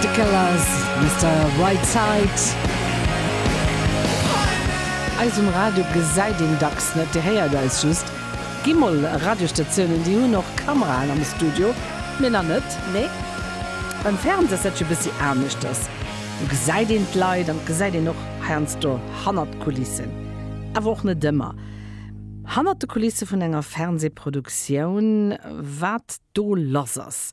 The Killers, Mister Whiteside. Eis um Radio gesäit een dacks net, dir héiert eis just. Gi mol Radiostatiounen, déi hunn och Kameraen am Studio, mir nach net, nee. Beim Fernseh ass dat jo e bëssi aneschters, do gesäit een d'Leit an et gesäit een och heiansdo hannert d'Kulissen. Awer och net ëmmer. Hannert de Kulisse vun enger Fernsehproduktioun, wat do lass ass.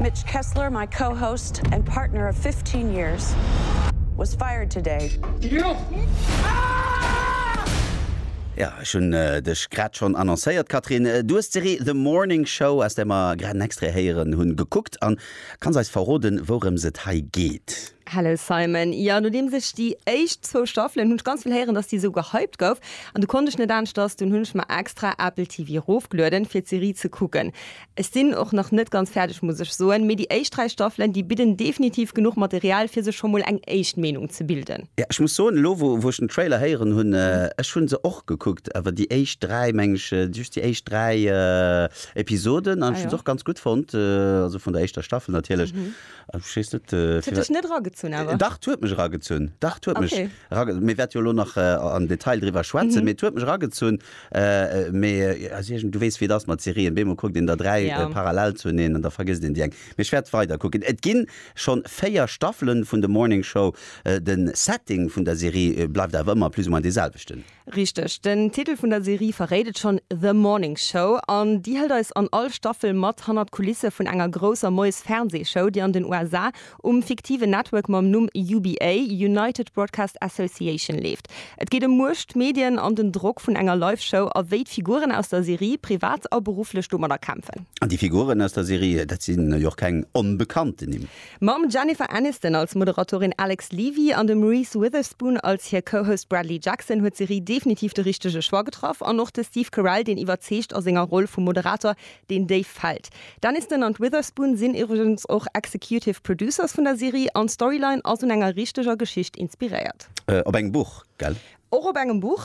Mitch Kessler, my co-host and partner of fifteen years, was fired today. Jo, ech hunn dech grad schonn annoncéiert, Catherine. Du hues d'Serie The Morning Show, aus där mer grad en Extrait héieren hunn, gekuckt an kanns eis verroden, wourëms et hei geet? Hello Simon, jo, nodeems ech déi éischt zwou Staffelen, hunn ech ganz vill héieren, dass déi esou gehypt gouf an du konnt ech net aneschters, dunn hunn ech mer extra Apple TV rofgelueden, fir d'Serie ze kucken. Ech sinn och nach net ganz fäerdeg muss ech soen, mee déi éischt 3 Staffelen, déi bidden definitiv genuch Material fir sech scho mol eng éischt Meenung ze bilden. Ja, ech muss soen, elo wou wou ech den Trailer héieren hunn, ech hunn se och gekuckt, awer déi éischt 3, meng ech, just déi éischt 3 Episoden, an ech hunn se och ganz gutt fonnt, also vun der éischter Staffel natierlech, an ech weess net, T huet dech net eragezunn awer? Dach, 't huet mech eragezunn, dach, 't huet mech Okay. erage, mir wäerte jo elo nach am Detail driwwer schwätzen, mee 't huet mech eragezunn. Mee also iergend, du weess wéi et ass mat Serien, beemol kuckt een der dräi parallel zuneen an da vergësst een déi eng. Mee ech wäert weiderkucken. Et ginn schonn véier Staffelen vun The Morning Show. Den Setting vun der Serie bleift awer ëmmer plus ou moins dee selwechten. Richteg. Den Titel vun der Serie verréit et schonn, The Morning Show. An déi hëlt eis an all Staffel mat hannert d'Kulisse vun enger grousser Moies-Fernseeshow, déi an den USA um fiktiven Network mam Numm UBA, United Broadcast Association, leeft. Et geet ëm Muecht, Medien an den Drock vun enger Live-Show a wéi d'Figuren aus der Serie privat a berufflech domadder kämpfen. An déi Figuren aus der Serie, dat sinn jo och keng onbekannten Nimm. Mam Jennifer Aniston als Moderatorin Alex Levy an dem Reese Witherspoon als hir Co-Host Bradley Jackson huet d'Serie definitiv de richtege Choix getraff an och de Steve Carell, deen iwwerzeegt a senger Roll vum Moderator, Deen Dave fällt. D'Aniston an d'Witherspoon sinn iwwregens och Executive Producers vun der Serie an d'Storyline ass un enger richteger Geschicht inspiréiert. Op engem Buch, gell? Och op engem Buch,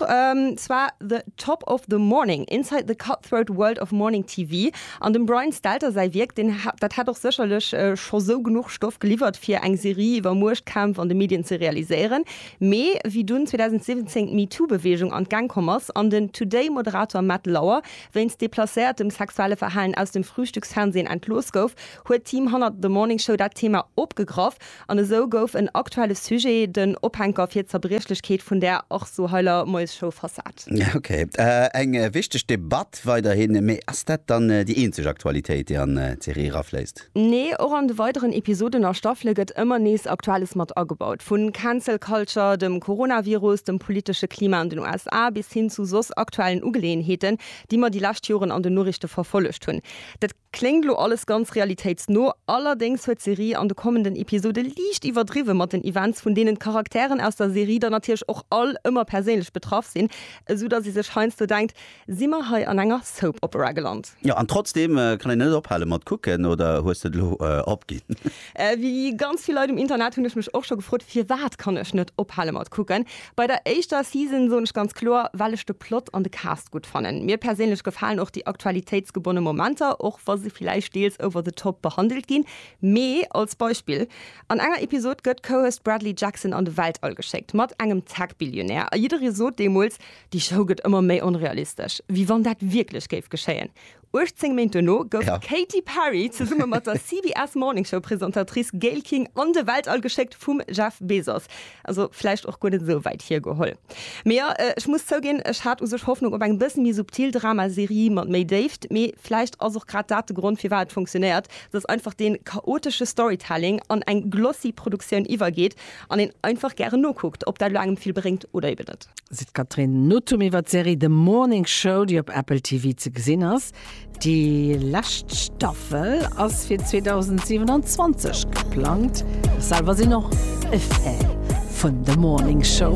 zwar The Top of the Morning, Inside the Cutthroat World of Morning TV. An dem Brian Stelter säi Wierk, deen dat hätt och sécherlech scho sou genuch Stoff geliwwert fir eng Serie iwwer Muecht, Kämpf an de Medien ze realiséieren. Mee wéi dunn 2017 d'MeToo-Beweegung an d'Gäng komm ass an den Today-Moderator Matt Lauer Wéinst deplacéiertem sexuelle Verhalen aus dem Frühstücksfernsehen entlooss gouf, huet d'Team hannert The Morning Show dat Thema opgegraff an esou gouf en aktuelle Sujet den Ophänker fir d'Zerbriechlechkeet vun där och sou heiler Moiesshow versat. Ok, eng wichteg Debatt weiderhin, mee ass dat dann déi eenzeg Aktualitéit, déi an d'Serie erafléisst? Nee, och an de weideren Episoden a Staffele gëtt ëmmer nees Aktuelles mat agebaut. Vu Cancel Culture, dem Coronavirus, dem politesche Klima an den USA bis hin zu soss aktuellen Ugeleeënheeten, déi mer déi lescht Joren an den Noriichte verfollegt hunn. Dat kléngt lo alles ganz realitéitsno, allerdéngs huet d'Serie an de kommenden Episode liicht iwwerdriwwe mat den Events, vun deenen d'Charakteren aus der Serie dann natierlech och all ëmmer perséinlech betraff sinn, esou dass ee sech heiansdo denkt, Si mer hei an enger Soap Opera geland? Jo, an trotzdeem kann een net ophale mat kucken, oder hues de et elo opginn? Wéi ganz vill Leit um Internet hunn ech mech och scho gefrot, firwat kann ech net ophale mat kucken. Bei der éischter Season soen ech ganz kloer, well ech de Plot an de Cast gutt fannen. Mir perséinlech gefalen och déi aktualitéitsgebonne Momenter, och wa se villäicht deels over the top behandelt ginn. Mee als Beispill, an enger Episod gëtt Cohost Bradley Jackson an de Weltall geschéckt, mat engem Tech-Billionär, a jidderee sot deemools, Déi Show gëtt ëmmer méi onrealistesch, wéi wann dat wierklech géif geschéien. 18 Méint duerno gouf d'Katy Perry zesumme mat der CBS Morning Show Presentatrice Gayle King an de Weltall geschéckt vum Jeff Bezos. Also vläicht och guer net esou wäit hiergeholl. Mee jo, ech muss zouginn, ech hat u sech Hoffnung op eng bëssen méi subtil Drama-Serie mat méi Déift. Mee vläicht ass och grad dat de Grond firwat et funktionéiert, dass einfach dee chaotesche Storytelling an eng glossy Produktioun iwwergeet an een einfach gären nokuckt, ob dat elo engem vill bréngt oder eben net. seet d'Catherine Nothum iwwer d'Serie The Morning Show, déi op Apple TV ze gesinn ass. Déi lescht Staffel ass fir 2027 geplangt. Ech selwer sinn och e Fan vun The Morning Show.